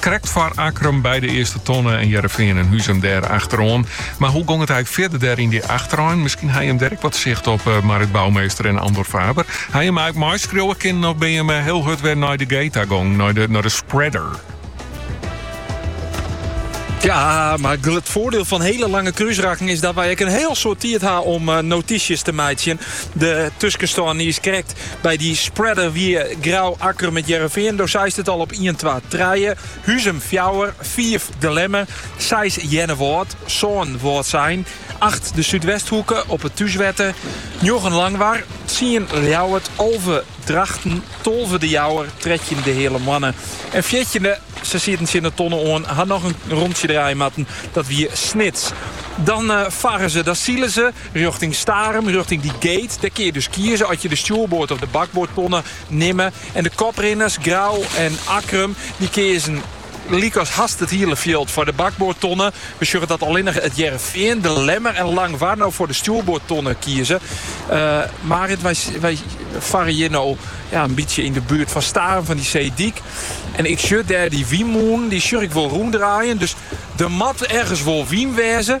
Krekt foar Akkrum, by de earste tonne en Hearrenfean en Huzum dêr achteroan. Mar hoe gong it ek fierder dêr yn dy achterein? Miskien hawwe jim dêr ek wat sicht op Marit Bouwmeester en Andor Faber. Hawwe jim ek meiskriuwe kinnen of binne jim hiel hurd wer nei de gate ta gong, nei de spreader? Ja, mar it voordeel fan hele lange kruisrakken is dat wy ek in heel soad tiid ha om eh, notysjes te meitsjen. De tuskenstân is krekt By dy spreader wie Grou, Akkrum, It Hearrenfean, do seist it al, op ien, twa, trije. Huzum fjouwer, fiif De Lemmer, seis Earnewâld, sân Wâldsein, acht de Súdwesthoeke op it thúswetter, njoggen Langwar, tsien Ljouwert, alve Drachten, tolve De Jouwer, trettjin De Heale Moanne en fjirtjinde, se sieten tsjin de tonne oan, ha noch in rontsje draaie moatten, dat wie Snits. Dan farre se, dan sile se. Rjochting Starum, rjochting dy gate. Dêr kin je dus kieze oft je de stjoerboard of de bakboard tonne nimme. En de koprinners, Grou en Akkrum, dy keazen lykas hast it hiele fjild foar de bakboard tonne. We sjogge dat allinnich It Hearrenfean, De Lemmer en Langwar no foar de stjoerboard tonne kieze. Eh, Marit, wy, wy farre hjir no ja, in bytsje yn de buert fan Starum, fan dy seedyk. En ik sjoch dêr dy wynmûne, dy sjoch ik wol rûndraaien. Dus der moat ergens wol wyn wêze.